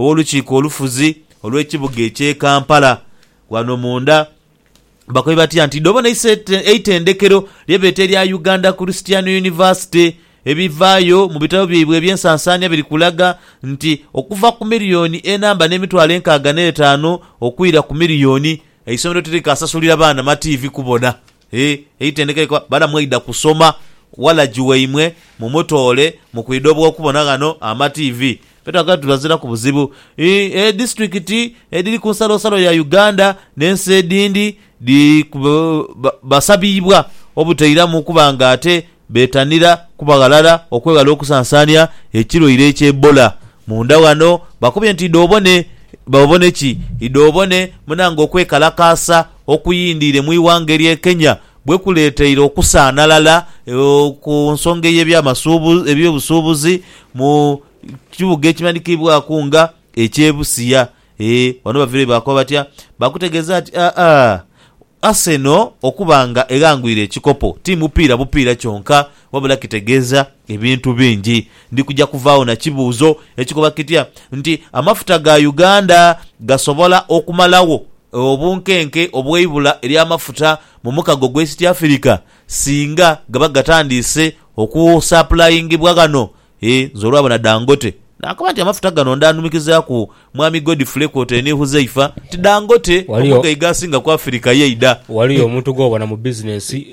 Ow'Olukiiko Olufuzi olw'ekibuga eky'e Kampala ghano munda bakoye batya nti idho bona iso eitendekero lye beeta erya Uganda Christian University. Ebivaayo mu bitabo byaibwe eby'ensansaania biri kulaga nti okuva ku miriyoni enamba n'emitwalo enkaaga n'etaanu okwira ku miriyoni, eisomero tirikasasulira baana mativi kubona. Hee eitendeka likoba bana mweidha kusoma walagi waimwe mumutoole mukwidha obwokubona ghano ama TV ffe twagala tubaziraku buzibu eeh disitulikiti edhiri kunsalosalo ya Uganda nensi edhindi dhi basabibwa obutairamu kuba nga ate beetanira kuba ghalala okweghala okusansaania ekirwaire ekya Ebola. Munda ghano bakubye nti idhobone babone ki? Idhobone muna ng'okwekalakaasa okuyindiire mu ighanga erye Kenya bwe kuleeteire okusaanalala ku nsonga ey'ebyamasuubu eby'obusuubuzi mu kibuga ekimanhikiibwaku nga eky'e Busia. Eeh wano bavireyo baakoba batya? Baakutegeeza nti aa, Arsenal okuba nga eghangwire ekikopo ti mupiira bupiira kyonka wabula kitegeeza ebintu bingi. Ndi kuja kuvaagho na kibuuzo ekikoba kitya nti amafuta ga Uganda gasobola okumalagho obunkenke obw'eibula ly'amafuta mu mukago gw'East Africa singa gaba gatandiise okusapulayingibwa ghano Eeh nze olwabona Dangote naakoba nti amafuta gano ndaanumikizaaku Mwami Godfrey kwotaire ni Huzaifa nti Dangote omugaiga asinga ku Afirika yaidha. Waliyo omuntu gw'obona mu bizinensi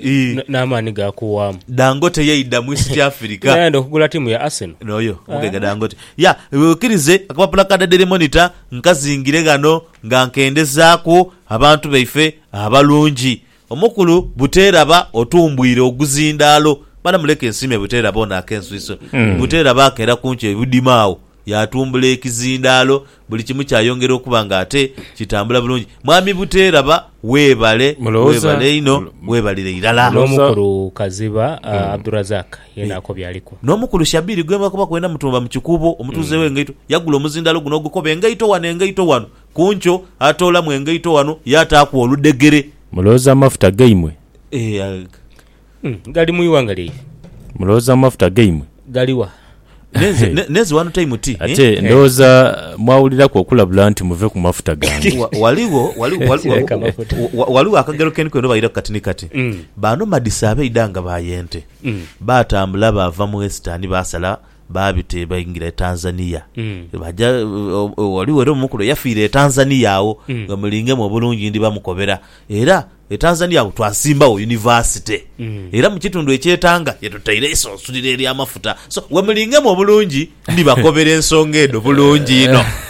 n'amaani gaakuwaamu? Dangote yaidha mu East Africa. Era yaidha okugula ttiimu ya Arsenal. N'oyo omugaiga Dangote. Ya, weekirize akapapula ka The Daily Monitor nkazingire ghano nga nkendezaaku abantu baife abalungi. Omukulu Buteeraba otumbwire oguzindaalo. Mala muleke nsiime Buteeraba ono ak'enswiso. Buteeraba akeera ku nkyo Budima agho yaatumbula ekizindaalo, buli kimu kyayongera okuba nga ate kitambula bulungi. Mwami Buteeraba weebale, Mulowooza- weebale inho, weebalire irala. Mulowooza- N'omukulu Kaziba, Abdurazak, yeena ako by'aliku. N'omukulu Shabiri gwe mwakoba kwena mutuumba mu Kikuubo, omutuuze w'e Ngaito, yagula omuzindaalo guno ogukoba engaito wano, engaito wano. Ku nkyo atoolamu engaito ghano yaataaku oludhegere. Mulowooza amafuta gaimwe. Ee, aye. Gali mu ighanga lyaife. Mulowooza amafuta gaimwe. Gali wa? N'enze, ne, n'enze ghano taimu ti, eh? Ate ndowooza mwawuliraku okulabula nti, Muve ku mafuta gange. Wa, ghaligho, ghaligho, ghaligho, Sireka amafuta. wa, wa, ghaligho akagero ke nkwenda obairaku kati ni kati. Baano madisa abaidha nga ba y'ente. Baatambula baava mu Wesitani baasala baabita e baingira e Tanzania. Baaja, ghaligho era omu ku lwe yafiira e Tanzania agho, nga mulingemu obulungi ndi bamukobera. Era e Tanzania agho twasimbawo yunivasite. Era mu kitundu eky'e Tanga ye tutaire eisunsuliro ery'amafuta. So, ghe mulingemu obulungi ndi bakobera ensonga edho bulungi inho.